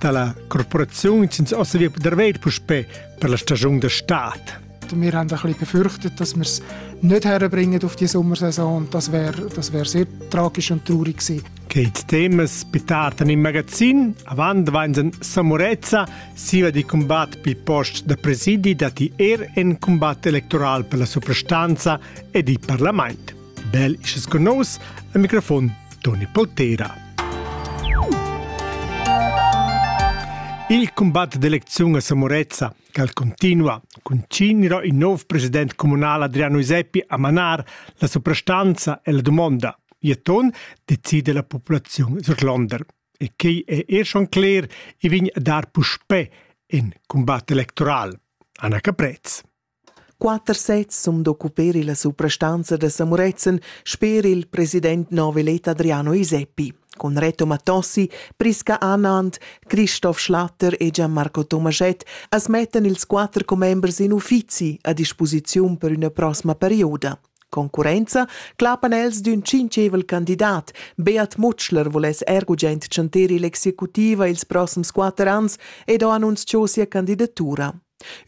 dalla Korporation sind außer wir der Welt puspé per la Stagion der Staat. Wir haben ein bisschen befürchtet, dass wir es nicht herbringen auf die Sommersaison und das wäre das wär sehr tragisch und traurig gewesen. Geht Themas pitaten in magazin, avant vainsen Samurezza, siva di combat pi post da presidi dati er en combat electoral per la soprastanza e di parlament. Bel isches con nos al microfon Toni Poltera. Il combat d'elecziun a Samorezza, cal continua, continua il nov president comunal Adriano Iseppi a manar la soprastanza e la domanda. Ieton decide la popolazione surlonder. E quei è er schon cler, i vin a dar puspè in combat electoral. Anna Caprez. Quatter sezs sun d'occuper illa suprastanza da Samurezzan sper il president novelet Adriano Iseppi, cun Reto Mattossi, Prisca Anand, Christoph Schlatter e Gianmarco Tomaschett as mettan ils quatter commembers in uffizi a disposiziun per üna prossima perioda. Concurrenza clapan els d'ün tschintschevel candidat. Beat Mutschler voless er gugent chanter ill'executiva ils prossims quatter ans ed ho annunzchò sia candidatura.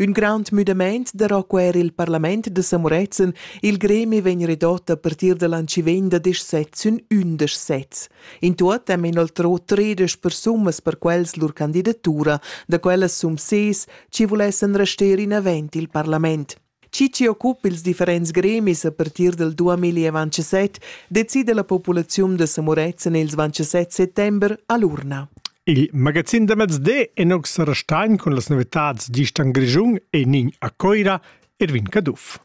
Ün grand müdamaint darò quer il parlament da Samuretzen, il gremi vegn redott a partir da l'ancivegn da desch sets sün ündesch sets. In tuot hem inoltrò tredesch persumas per quels lur candidatura, da quellas sum ses, chi vulessan rester inavant il parlament. Chi chi occupa ils differents gremis a partir dal 2027 decida la populaziun da Samurezzan ils 27 settember a l'urna. Il magazin da mezde è nox restain cun las novitads Distan Grischun e Nin a Coira Erwin Caduff.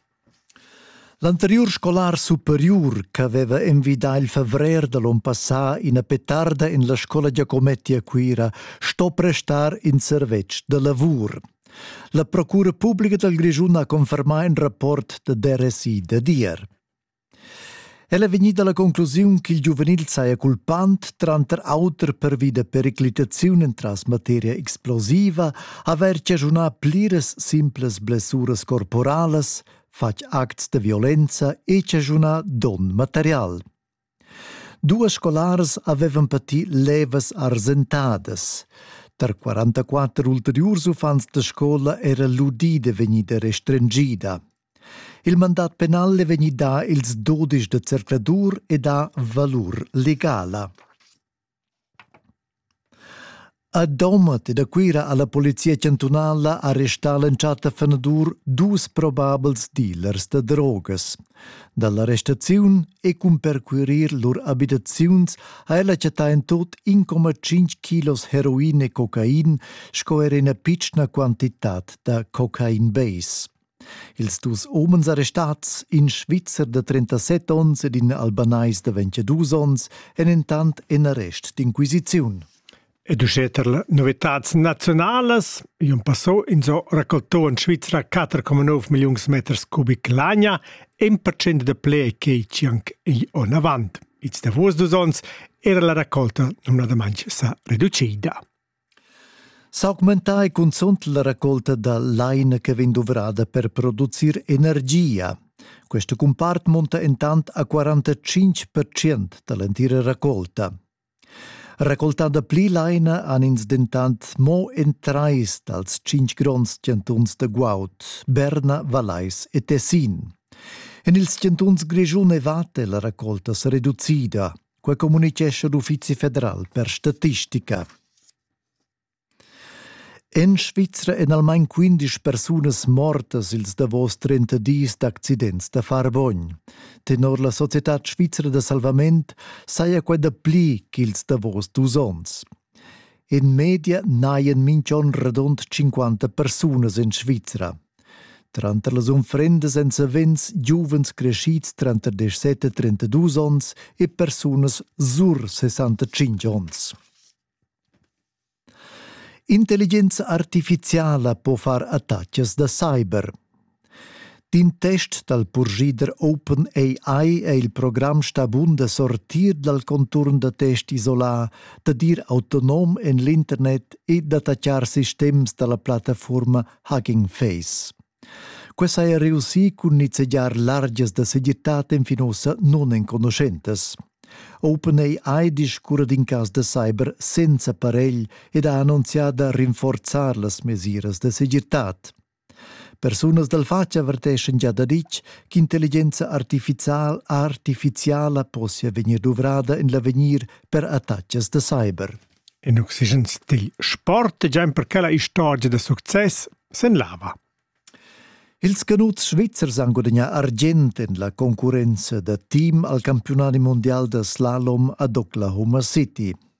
L'anteriur scolar superiur ch'aveva envidà il favrer da l'on passà ina petarda en la scola Giacometti a Cuira sto prestar in servetsch da lavur. La procura publica dal Grischun ha confermà in rapport da DRSI da dir. El è vegnida la conclusiun ch'il giuvenil saja culpant, tranter auter pervi da periclitaziun entras materia explosiva, avair chaschunà pliras simplas blessuras corporalas, fatg acts da violenza e chaschunà don material. Duas scolars havevan pati levas arsentadas. Tar 44 ulteriurs uffants da scola era l'udida vegnida restringida. Il mandat penal è vegnì dà ils dudisch da circladur ed ha valur legala. A Domat ed a Cuira ha la polizia chantunala arrestà l'entschatta fenadur dus probabels dealers da drogas. Da l'arrestaziun e cun percurir lur abitaziuns ha ella chattà en tut 1,5 kilos heroin e cocain sco er ina pitschna quantitad da cocain base. Ils dus homens arrestats, in Svizzer de 37 onns ed in Albanais de 22 onns, èn entant en arrest d'inquisiziun. Ed uschè tar las novitads naziunalas, io passò in so raccoltò in Svizra 4,9 milliuns meters cubic lagna, en percent de ple che cianc i on avant. Ils davos dus onns era la raccolta numnadamant sa reducida. S'augmentà ei cunzunt la raccolta da laina che vegn duvrada per producir energia. Questo compart monta intant a 45% dall'entira raccolta. Raccoltando pli laina han ins dentant mo en trais dals cinc gronds chantuns da guaud, Berna, Vallais e Tessin. En ils chantuns Grischun e Vate è la raccolta sereducida. Quai communitgescha l'Uffizi federal per statistica. En Svizra èn almain 15 persunas mortas ils davos 30 dis d'accidents da farvogn. Tenor la Società svizra da salvament saja quai dapli ch'ils davos dus onns. In media n'hajan minch'on radund tschinquanta persunas in Svizra. Tranter las unfrendas èn savens giuvens creschids tranter 17 e 32 onns e persunas sur 65 onns. Intelligenza artifiziala po far attacas da cyber. D'in test dal purschider OpenAI è il program stà bun da sortir dal conturn da test isolà, dad ir autonom en l'internet e d'attaccar sistems da la plattafurma Hugging Face. Quai saja reussì cun nizzegiar largias da segirtad enfin ussa nunenconuschentas. OpenAI discurra d'in cas da cyber senza paregl ed ha annunzià da rinforzar las mesiras da segirtad. Persunas dal fatg averteschan gia da ditg ch'intelligenza artificial artificiala possia vegnir duvrada en l'avegnir per attacks da cyber. In oxigen stil sport è già perché la istorgia da success sen lava. Ils canuts svizzers han gudagnà argient en la concurrenza da team al campiunadi mondial da slalom ad Oklahoma City.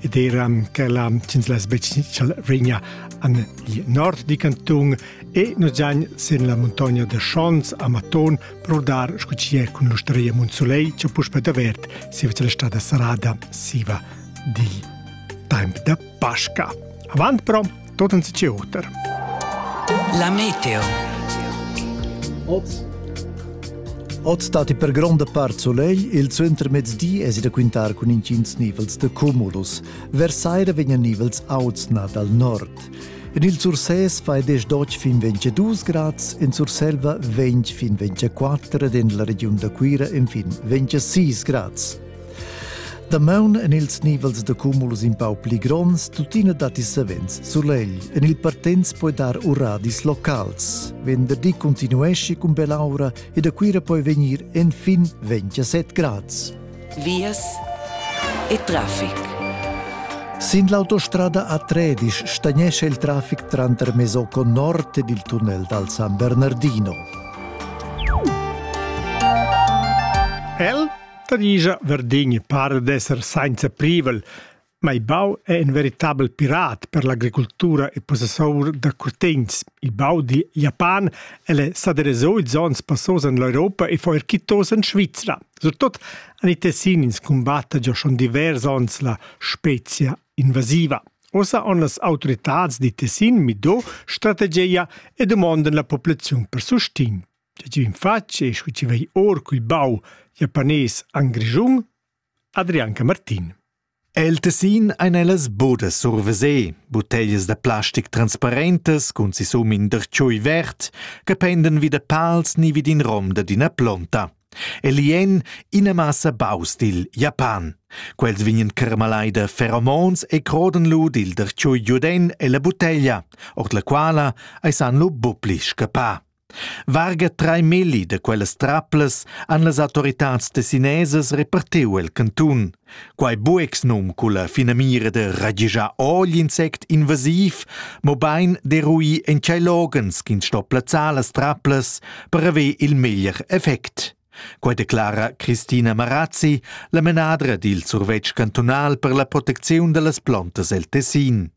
ed eram ch'ella ch'ins less regna an il nord di canton e nos giagn sin la montagna de Schons a Maton prodar scu ci cun l'ustreia Monsoleil che puspe davert siva la strada sarada siva di temp de Pasca. Avant però tot en si oter. La meteo. Oz Oz dati per gronda part solegl, il suentermezdi es da quintar cun intgins nivels de cumulus. Vers saira vegnan nivels auts na dal nord. En il Sursès fai 10-12 fin 22 grads, in Surselva 20 fin 24 ed en la regiun da Cuira infin 26 grads. Damaun en ils nivels da cumulus in pau pli gronds, tuttina datti savens sulegl. En il Partens puoi dar uradis locals. Venderdi continuesci cun bell'aura e da Cuira puoi vegnir enfin 27 grads. Vias e traffic. Sin l'autostrada a Tredisch stagnesce il traffic tranter Mesocco nord ed il tunnel dal San Bernardino. El? Ta digia, Verdign para d'esser sainza privel, ma il bau è in veritabel pirat per l'agricultura e possessor da curtegns. Il bau di Japan el è s'aderezzò ils onns passos en l'Europa e foi erquitos en Svizra. Surtot han i tessin ins combatta già schon divers onns la spezia invasiva. Ossa on las autoritads di Tessin mido strategia e domondan la populaziun per sustin. Tge ti fatg e scu ti vei or cul bau japanés an Grischun? Adrianca Martin. El tessin ein ellas budas survesé, butteglias da plastic transparentas cun sisum in dertschui vert, che penden vi da pals ni vid in rom da d'ina plonta. E li en ina massa baus dil Japan. Quels vignen carmalai da feromons e croden lu dil dertschui giuden ella butteglia, ord la quala ei san lu bupli scappar. Varga trai melli da quellas traplas han las autoritads tessinesas repartiu el cantun. Quei buex num culla finamira da ragischar ogl insect invasiv, mobein derui en tschei loghens ch'ins sto plazzar las traplas per haver il meglier effect. Quei declara Christina Marazzi, la menadra dil survetsch cantunal per la protecziun dallas plontas el Tessin.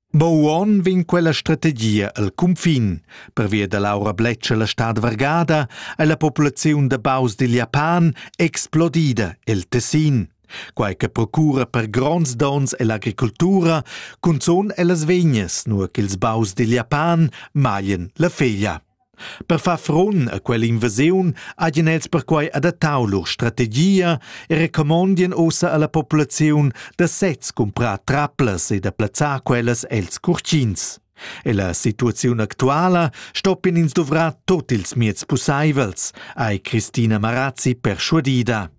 Bo uonn vegn quella strategia el cunfin. Pervia da l'aura bletscha la stad vargada è la populaziun da baus dil Japan explodida el Tessin. Quai che procura per gronds dons ell'agricoltura, cunzun ellas vegnas, nur ch'ils baus dil Japan maglien la feglia. Per far frun a quell'invasiun hajan els perquai adattau lur strategia e recomondien ussa alla populaziun da sez cumprar traplas e da plazzar quellas els curtins. Ella situaziun actuala stoppien ins duvrar tot ils mieds pusseivels, ei Christina Marazzi perschuadida.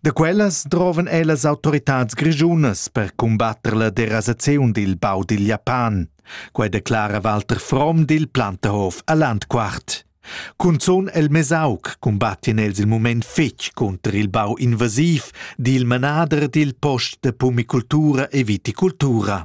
Da quellas drovan ellas autoritads grischunas per cumbatter la derasaziun dil bau dil Japan. Quei declara Walter Fromm dil Plantehof a Landquart. Cunzun el Mesauc cumbattien els il mument fetg cunter il bau invasiv dil manader dil post de pumicultura e viticultura.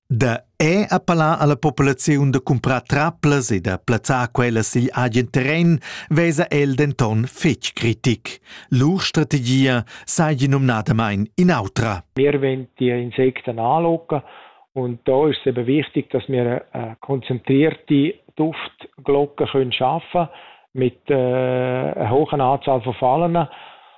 Da è appellà alla populaziun da cumprar traplas e da plazzar quellas sigl agen terren vesa el denton fetg critic. Lur strategia seigi numnadamain in'autra. Wir wollen die Insekten anlocken und da ist es eben wichtig, dass wir eine konzentrierte Duftglocke können schaffen mit äh, einer hohen Anzahl von Fallen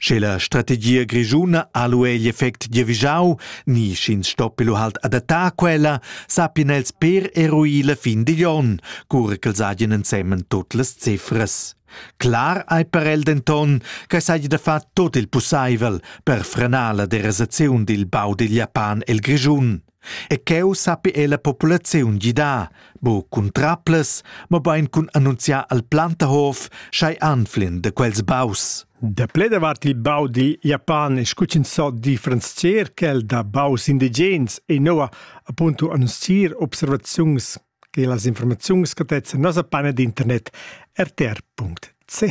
Sche la strategia grischuna ha lu egl effect giavischau ni sch'ins stoppi lu halt adattar quella, sappien els per eruir la fin digl onn, cura ch'els hagien ensemen tut las cifras. Clar ei per el denton che seigi da far tot il pusseivel per frenar la derasaziun dil bau digl Japan el Grischun. E cheu sappi ella populaziun gidar, bu cun traplas, mobein cun annunziar al Plantahof sch'ei anflin da quels baus. Da ple davart il bau di Japan e scuchinzò differents cerchel da baus indigens e noua appunto annunzier observaziuns che las informaziuns gadezzan nossa panna d'internet rtr.ch.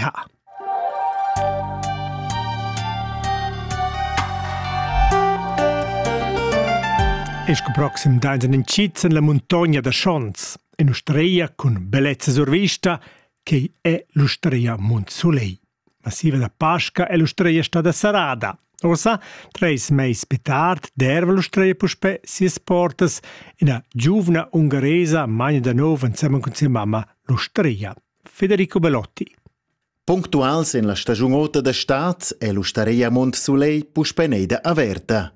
E sco proxim dains en incits en la muntogna da Schons, en Ustreia cun bellezza survista, che è l'Ustreia Mont Soleil. La siva da Pasca è l'ustreia stada serrada. Ussa, treis mais pli tard, derva l'ustreia puspè sias portas ina giuvna ungaresa magna da nov ensemen cun sia mamma l'ustreia, Federico Belotti. Punctuals en la stagiun ota da stad è l'ustareia Mont Soleil puspè neida averta.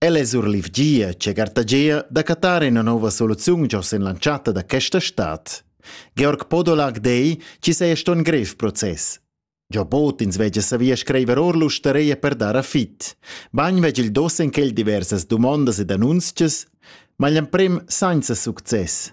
El es surlivgia che gartagia da cattar ina nova soluziun giò sin l'entschatta da questa stad. Georg Podolag dei chi seja ston grev process. Giò bod ins vegia savia scriver or l'ustareia per dar a fit. Bagn veg il dos in quel diversas dumondas ed annunzches, ma l'emprim sainza success.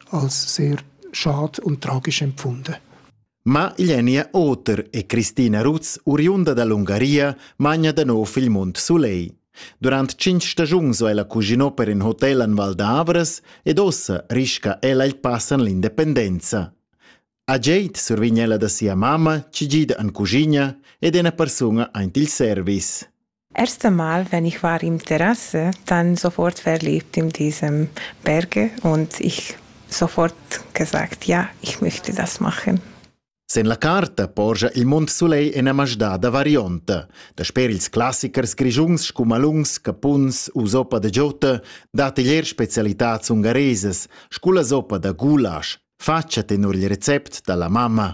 als sehr schad und tragisch empfunden. Ma Iljenia Oter e Cristina Ruz, oriunda dall'Ungaria, magna da nov il Mont Soleil. Durant cinc stagiuns va ella cuginò per in hotel en Val d'Avras ed ossa risca ella il pass en l'independenza. A Geit survign ella da sia mamma, ci gida en cuginia ed è una persona aint il service. Erst einmal, wenn ich war im Terrasse, dann sofort verliebt in diesem Berge und ich sofort gesagt, ja, ich möchte das machen. Sen la carta porscha il mund sulei ina masdada varionta. Dasper ils classichers grischuns scumalungs, capuns u soppa de giotta dat igl er specialitats ungaresas, sculla soppa da goulasch. Faccia tenor il recept dalla mamma.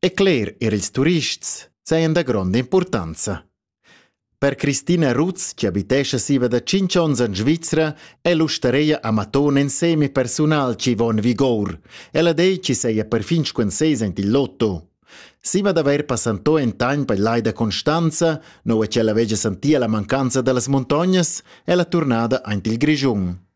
E cler er ils turists sajan da gronda impurtanza. Per Christina Rutz, che abitescha siva da 5 onns en Svizra, è l'ustareia Amaton en semi-personal chi va en vigor. Ella dei chi seia perfin squenseis ent il lotto. Siva d'avair passanto en tagn per l'ai da Constanza, no e ch'ella vegia santia la mancanza da las montognas, è la turnada aint il Grischun.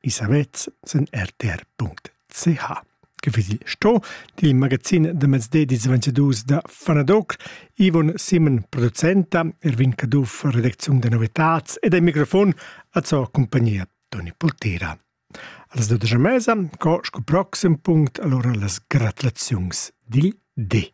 i savets sen rtr.ch che vedi sto dil magazin da mezde dis 22 da Fanadoc Ivon Simon producenta Erwin Caduff redacziun da novetats ed ein microfon a zo compagnia Toni Poltera Als 12 mesa, co sco proxim punct allora las gratulaziuns dil D.